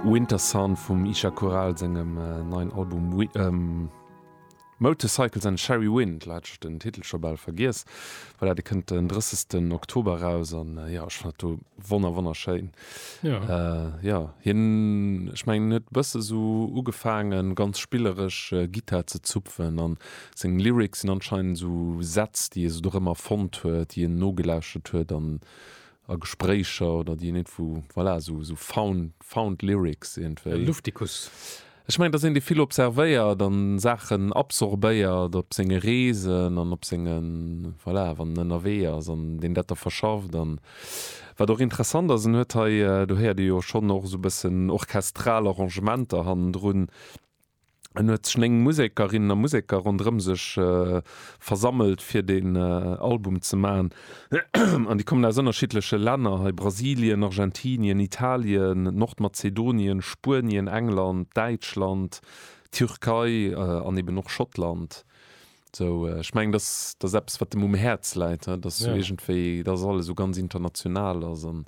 Winter Sun vum Isha Coral sengem neien Album Motorcycles and Cherry Wind. Lo hat ech den Titel scho bal vergiess, well dat e kënnt den 30 Oktober eraus an jo ech fand do wonner wonnerschéin. Jo hien ech mengen huet e bësse sou ugefaangen ganz spilleresch Gittar ze zupfen an seng Lyrics sinn anscheinend sou Sätz déi e sou dorëmmer fonnt huet, déi en nogelauschtert huet an a Gespréicher oder déi een iergendwou, voilà, sou, sou found, found lyrics iergendwéi. Luftikus. Ech mengen, dass een déi vill observéiert an Saachen absorbéiert op senge Reesen an op sengen, voilà, wann en ënnerwee ass an deen dat da verschafft. An wat och interessant ass, en huet hei, do héiert ee jo schonn och esou e bëssen orchestral Arrangementer hannendrun, En huet sech 9 Musekerinnen a Museker ronderëm sech versammelt fir deen Album ze maachen. An déi kommen aus ënnerschiddleche Länner, hei Brasilien, Argentinien, Italien, Nordmazedonien, Spuenien, England, Däitschland, Türkei an eben och Schottland. Sou ech mengen dat ass eppes wat em um Häerz läit, datt esou iergendwéi datt alles esou ganz international ass an.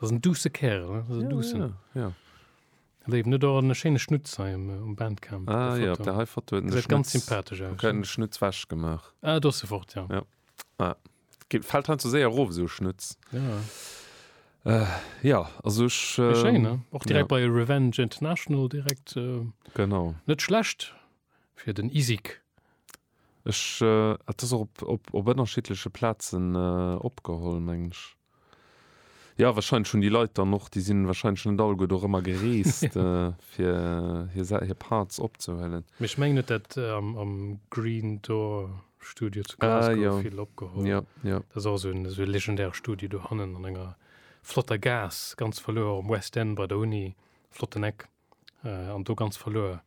Ass en douce Kerl, ne? Ass en doucen. Ja, ja, ja. Hat er eben net och en schéine Schnutz hei um, um Bandcamp? Ah ja, op der hei Foto huet en de Gesäit ganz Schnutz, sympathesch aus, huet en ne? de Schnutz wech gemaach. Ah, do ass e fort, ja. Ja. Ah, ge- fällt heinzu séier erof, esou e Schnutz. Ja. Ja, also ech. Méi ähm, schéin, ne? Och direkt ja. bei Revenge International direkt, äh, Genau. net schlecht fir den Isik. Ech, et ass och op ënnerschiddleche Plazen opgeholl, mengen ech. Jo, wahrscheinlech hunn déi Leit dann och, déi sinn wahrscheinlech net alleguer do rëmmer gereest, fir hir Parts opzehuelen. Mee ech mengen, huet dat am Green Door Studio zu Glasgow vill opgeholl. Ah, jo, jo, jo. Dat ass och esou e legendäre Studio dohannen an enger flotter Gaass, ganz verluer am West End bei der Uni. Flotten Eck. an do ganz verluer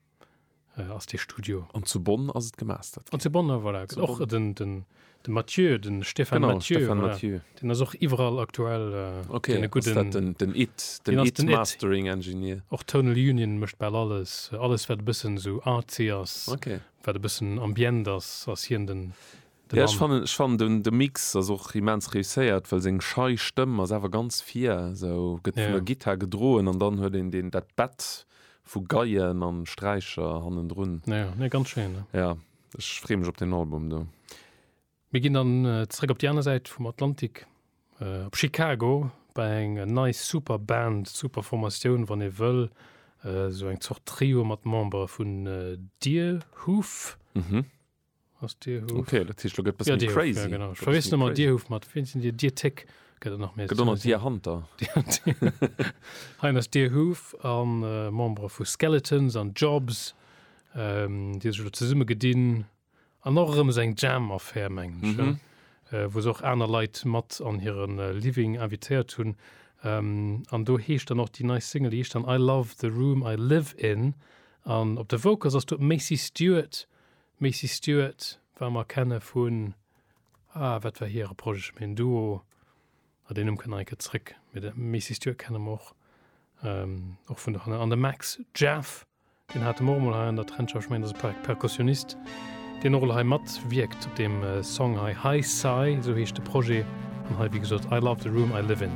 äh, ass de Studio. An zu Bonn ass et gemastert. An zu Bonn, voilà. Zu och Bonn. den, den, den Mathieu, den Stefan genau, Mathieu. Stefan voilà. Mathieu. Den ass och iwwerall aktuell. Äh, okay, den, guten, den, den It, den, den It, den Mastering Engineer. Och Tonal Union mëcht bal alles. Alles wat e bëssen so artsy ass, okay. wat e bëssen ambient ass, ass hien den. De Mann. Ja ech fannen de Mix ass och immens réusséiert, well seng schei Stëmm ass awer ganz vir esou, gëtt vun der Gittar gedroen an dann huet een deen dat Bett vu Geien an Sträicher hannendrun. Ja nee ganz schéin. Ja ech free mech op den Album do. Mir ginn dann zréck op déi aner Säit vum Atlantik op Chicago bei eng nei super Band, super Formatioun wann ee wëll, esou eng Zort Trio mat Membere vun Deerhoof. ass Dir Huf. Okay, dat heescht, lo gëtt bëssen Dir Huf, crazy. Ja, genau. Ech verwiessen ëmmer Dir Huf mat, wien sinn Dir? Dir Téck gëtt et nach méi. Gëtt och nach Dir Hanter. Hien ass Dir Huf a Membere vu Skeletons an Jobs, ähm, déi sech elo zesumme gedinn. An och erëm esou eng Jam-Affär, mengen ech, ja? Äh, wou se och aner Leit mat an hiren Living invitéiert hunn. Ähm, an do heescht dann och déi nei Single, déi heescht dann I Love the Room I Live In. An op de Vocals ass do d'Macy Stewart. D'Macy Stewart war mer kenne vun, ah wat war hire Projet, ech mengen Duo, ah deen Numm kënnt nach eng Kéier zréck, mee de Macy Stewart kenne mer och, och vun dohannen. An de Max Jaff, deen hate mer och emol hei an der Trendschau, ech mengen dat ass e Perkussionist, deen och elo hei mat wierkt op deem Song hei, Hi-Sci esou heescht de Projet, an hei wéi gesot I love the room I live in.